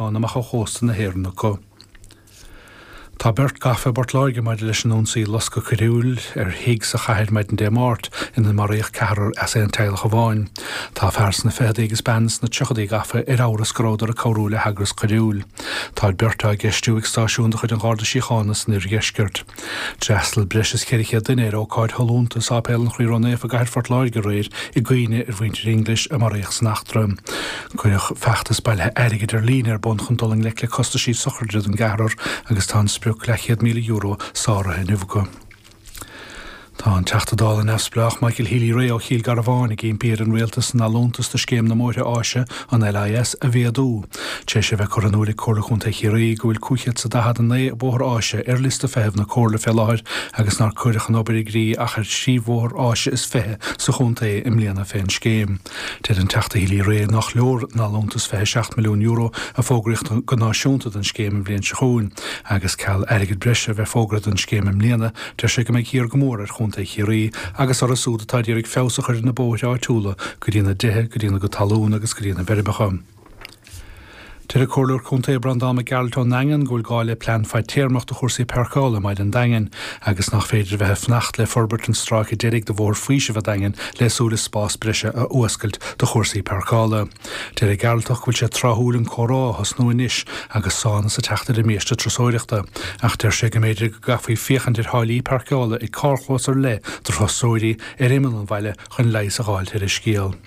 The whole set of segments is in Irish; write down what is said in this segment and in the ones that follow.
amach ó chósta na hÉireann acu. Tá beirt gafa i bPort Láirge maidir leis an ionsaí loscadh coiriúil ar thigh sa chathair maidin Dé Máirt ina maraíodh ceathrar as aon teaghlach amháin. Tá fear sna ficheadaí agus bean sna tríochadaí gafa ar amhras go rabhdar ag cabhrú le heagras coiriúil. Tá beirt á gceistiú ag stáisiún de chuid an Gharda Síochána san oirdheisceart. D'fhreastal breis is 400 duine ar ócáid shollúnta i Sáipéal an Chroí Ró-Naofa i gCathair Phort Láirge aréir i gcuimhne ar mhuintir Inglis a maraíodh san eachtra. Cuireadh feachtas bailithe airgid ar líne ar bun chun dul i ngleic le costaisí sochraide don gceathrar agus tá an sprioc, leathchéad míle euro, sáraithe inniu acu. Tá an Teachta Dála neamhspleách Michael Healy-Rae ó Chill Garbháin ag impí ar an rialtas an allúntas do scéim na mbóithre áise, an LIS, a mhéadú. Tréis a bheith curtha in iúl ag Comhairle Chontae Chiarraí go bhfuil 549 bóthar áise ar liosta feithimh na Comhairle fé láthair agus nár cuireadh an obair i gcrích ach ar thrí bhóthar áise is fiche sa chontae i mbliana fén scéim, deir an Teachta Healy-Rae nach leor an allúntas €27 milliún a fógraíodh go náisiúnta don scéim an bhliain seo chugainn agus, ceal airgid bhreise a bheith fógartha don scéim i mbliana, Deir sé go mbeidh thiar go mór ar Chontae Chiarraí agus orthu siúd atá ag iarraidh feabhas a chur ar na bóithre áitiúla go dtína dtithe, go dtína ngabháltais talún agus go dtína bhfeirmeacha. Deir an Comhairleoir Contae Breandán Mac Gearailt ón nDaingean go bhfuil gá le plean fadtéarmach do chúrsaí páirceála i mBaile an Daingin agus nach féidir a bheith ag fanacht le forbairt an stráice deiridh de Bhóthar Faoisimh an Daingin le súil is spás breise a fhuascailt do chúrsaí páirceála. Deir an Gearaltach go bhfuil sé tráthúil an comhrá a thosnú anois agus suaimhneas ag teacht ar an mbiaiste turasóireachta, ach deir sé go mb'fhéidir go gcaithfí féachaint ar tháillí páirceála ag carrchlós ar leith do thurasóirí ar imeall an bhaile chun leigheas a dh'fháilt ar an scéal.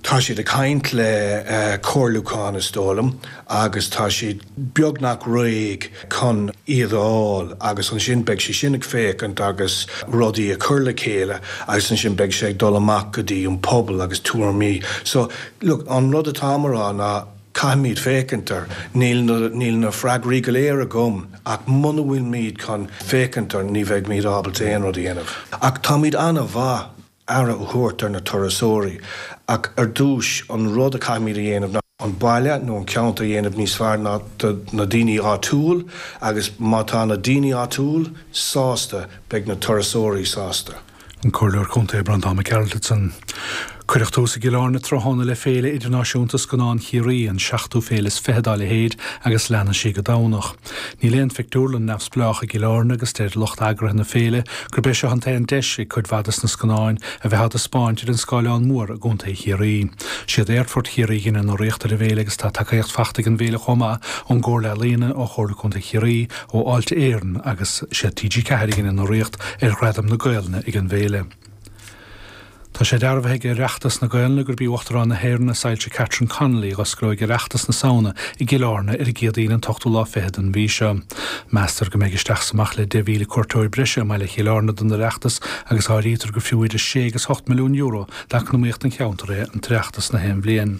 Tá siad ag caint le comhairliúchán is dóigh liom agus tá siad beagnach réidh. chun iad a fháil agus ansin beidh sé sin ag féachaint agus rudaí a chur le chéile agus ansin beidh sé ag dul amach go dtí an pobal agus tuairimí. So, look, an rud atáim a rá ná caithfimid féachaint air, ní, níl na freagraí go léir agam ach muna bhfuilmid chun féachaint air ní bheimid ábalta aon rud a dhéanamh. Ach táimid an-mhaith. aire a thabhairt ar na turasóirí, ach ar dtús, an rud a caithfimid a dhéanamh ná an baile nó an ceantar a dhéanamh níos fearr do na daoine áitiúil agus má tá na daoine áitiúil sásta, beidh na turasóirí sásta. An Comhairleoir Contae Breandán Mac Gearailt ansan. Cuireadh tús i gCill Airne tráthnóna le Féile Idirnáisiúnta Scannán Chiarraí, an seachtú féile is fiche dá leithéid agus leanfaidh sí go Domhnach. Níl aon phictiúrlann neamhspleách i gCill Airne agus deir lucht eagraithe na féile gurb é seo an t-aon deis ag cuid mhaith de na scannáin a bheith á dtaispeáint ar an scáileán mór i gcontae Chiarraí. Siad Aerfort Chiarraí a dhein an urraíocht ar an bhféile agus tá tacaíocht faighte ag an bhféile chomh maith ón gComhairle Ealaíona, ó Chomhairle Contae Chiarraí, ó Fháilte Éireann agus siad TG4 a dhein an urraíocht ar Ghradaim na Gaelainne ag an bhféile. Tá sé dearbhaithe ag Oireachtas na Gaelainne gurb í Uachtarán na hÉireann, a Soilse Catherine Connolly, a dh'osclóidh Oireachtas na Samhna i gCill Airne ar an gCéadaoin an t-ochtú lá fichead den mhí seo. Meastar go mbeidh isteach is amach le 10,000 cuairteoir breise i mbaile Chill Airne don Oireachtas agus áirítear gur fiú idir sé agus ocht milliún euro d'eacnamaíocht an cheantair é an tOireachtas na haon bhliain.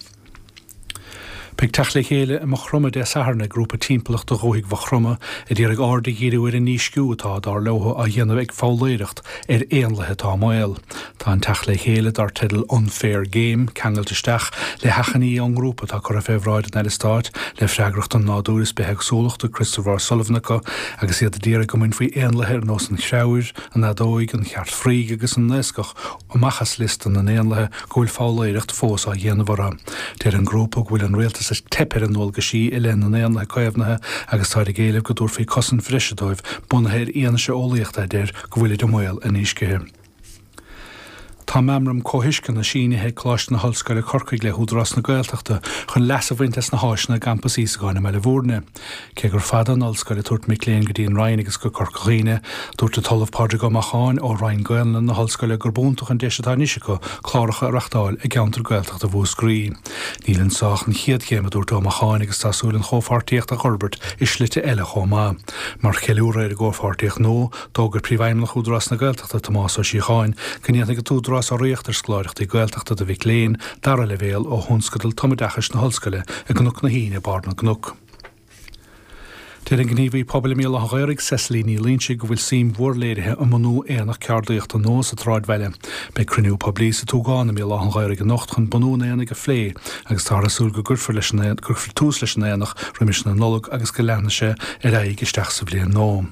Beidh teacht le chéile i Maigh Chromtha Dé Sathairn ag grúpa timpeallachta Dhúthaigh Mhaigh Chromtha a d'iarraidh aird a dhíriú ar an ndísciú atá, dar leo, á dhéanamh ag foghlaeireacht ar éanlaithe atá i mbaol. Tá an teacht le chéile, dar teideal Unfair Game, ceangailte isteach le hachainí ón ngrúpa atá curtha fé bhráid an Aire Stáit le freagracht don Nádúr is Bithéagsúlachta, Christopher O'Sullivan acu agus iad a d'iarraidh go mbainfí éanlaithe ar nós an chreabhair, an fheadóig, an chearc fraoigh agus an naoscach amach as liosta na n-éanlaithe go bhfuil foghlaeireacht fós á dhéanamh orthu. Deir an grúpa go bhfuil an rialtas ag teip ar a ndualgaisí i leith na n-éanlaithe caomhnaithe agus táid ag éileamh go dtabharfaí cosaint bhreise dóibh, bunaithe ar fhianaise eolaíochta a deir go bhfuilid i mbaol a ndíscithe. Tá meamram comhthuisceana sínithe ag Coláiste na hOllscoile Corcaigh le hÚdarás na Gaeltachta chun leas a bhaint as na háiseanna i gCampas Íosagáin i mBaile Mhúirne. Cé gur fada an ollscoil ag tabhairt mic léinn go dtí an Rinn agus go Corca Dhuibhne, dúirt an tOllamh Pádraig Ó Macháin ó Roinn Gaolainne na hOllscoile gurb iontach an deis atá anois acu cláracha a reachtáil i gceantar Gaeltachta Mhúscraí. Níl anso ach an chéad chéim, a dúirt Ó Macháin agus tá súil an chomhpháirtíocht a fhorbairt i slite eile chomh maith. Mar cheiliúradh ar an gcomhpháirtíocht nua, d'fhógair Príomhfheidhmeannach Údarás na Gaeltachta, Tomás Ó Síocháin, go ndéanfaidh an tÚdarás urraíocht ar scoláireachtaí Gaeltachta do mhic léinn dara leibhéal ó thionscadal tumoideachais na hollscoile i gCnoc na hAoine, Barr na gCnoc. Deir an gníomhaí pobail i mBéal Átha an Ghaorthaidh, Cecily Ní Loingsigh, go bhfuil suim mhór léirithe i mbunú aonach ceardaíochta nua sa tsráidbhaile. Beidh cruinniú poiblí sa tSúgán i mBéal Átha an Ghaorthaidh anocht chun bunú an aonaigh a phlé agus táthar ag súil go gcuirfear tús leis an aonach roimis na Nollag agus go leanfaidh sé ar aghaidh isteach sa bhliain nua.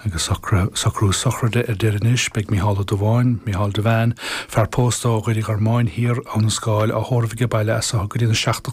Agus socrú sochraide ar deireadh anois, beidh Micheál Ó Dubháin, Micheál Devane, fear pósta ó Dhoire Gormáin Thiar, Abhainn an Scáil á thórramh aige baile as seo go dtí na 7